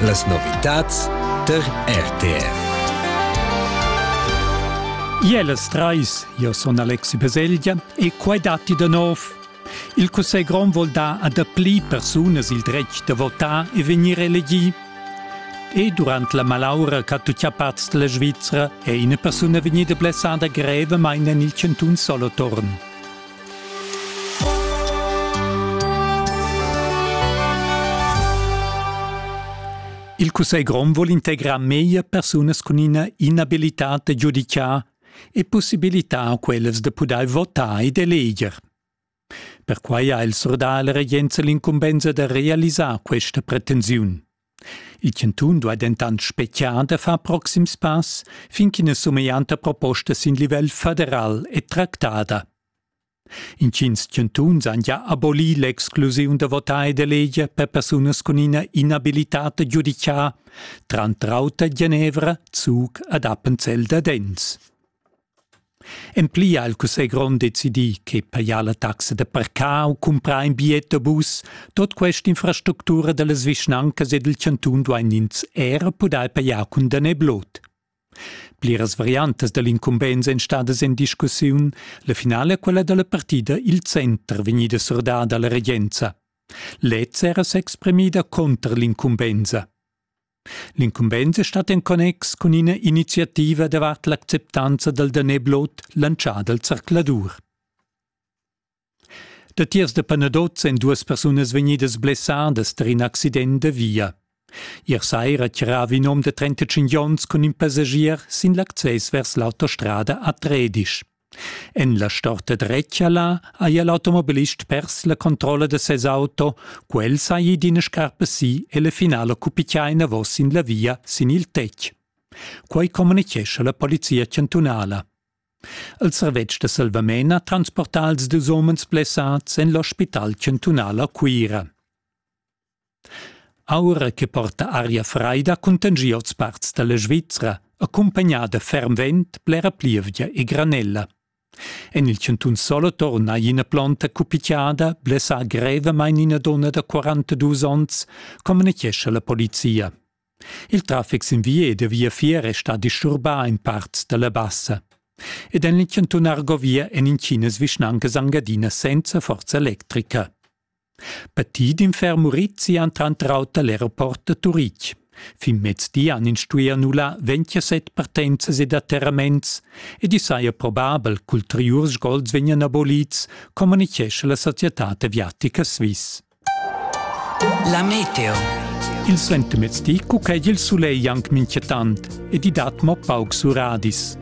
Las novitads tar RTR. Jeles trais, io son Alexi Beselgia e quai datti da nov. Il Cussegl grond vuol dar a dapli persunas il dretg da votar e vegnir elegì. E durant la malaura ch'ha tuttia parts della Svizzera è ina persuna vegnida blessada grevemain en il cantun Solothurn. Il cussegl grond vuol integrar meglio persunas cun ina inabilitad da giudicar e possibilitar quellas da pudair votar ed eleger. Perquai ha il surdà la regenza l'incumbensa da realisar questa pretensiun. Il chantun duai dentant spetgar da far proxims pass fin ch'ina sumeglianta proposta sin livel federal è tractada. Intgins chantuns han gia abolì l'exclusiun da votar e d'eleger per persunas cun ina inabilitad giudica, tranter auter Genevra, Zug ad Appenzell Dadens. En pli ha il cussegl grond decidì che pajar la taxa da parcar u cumprar in bigliet da bus, tut quest'infrastructura da las vischnancas e dal chantun duain ins era pudair pajar cun danè blot. Pliras variantas da l'incumbensa èn stadas en discussiun, la finala è quella da la partida Il Center vegnida surdada alla regenza. Lez era s'exprimida contr l'incumbensa. L'incumbensa stat en connex cun ina iniziativa davart l'acceptanza dal daneblot lantschà dal zercladur. Datiers da Panaduz èn duas persunas vegnidas blessadas tar in accident da via. Ier saira tiravi in um da 35 onns cun in passagier sin l'access vers l'autostrada a Tredisch. En la storta dretgala haja l'automobilist pers la controlla da ses auto, quel saja d'ina scarpa si e la finala cupitia enavos sin la via sin il tetg. Quai communitgescha la polizia chantunala. Il servetsch da salvament ha transportà els dus umens blessads en l'ospital chantunal a Cuira. Aura che porta aria fraida cuntangia oz parts dalla Svizra, accumpagnada ferm vent, blera plievgia e granella. En il chantun Solo torna ina plonta cupitiada, blessà grevamain ina donna da 42 onns, communitgescha la polizia. Il traffic sin via e da viafier è stà disturbà in parts da la bassa. Ed en il chantun Argovia en intginas vischnancas angadina senza forza electrica. Patì d'in ferm urizzi han tranter auter l'aeroport da Turitg. Fin mezdi han ins stuì annullar 27 partenzas ed atterraments ed i saja probabel ch'ulteriurs sgols vegnan abolids, communitgescha la societad aviatica Swiss. La meteo. Il suentermezdi cuced il sulegl anc mintgatant ed i dat mo paucs uradis.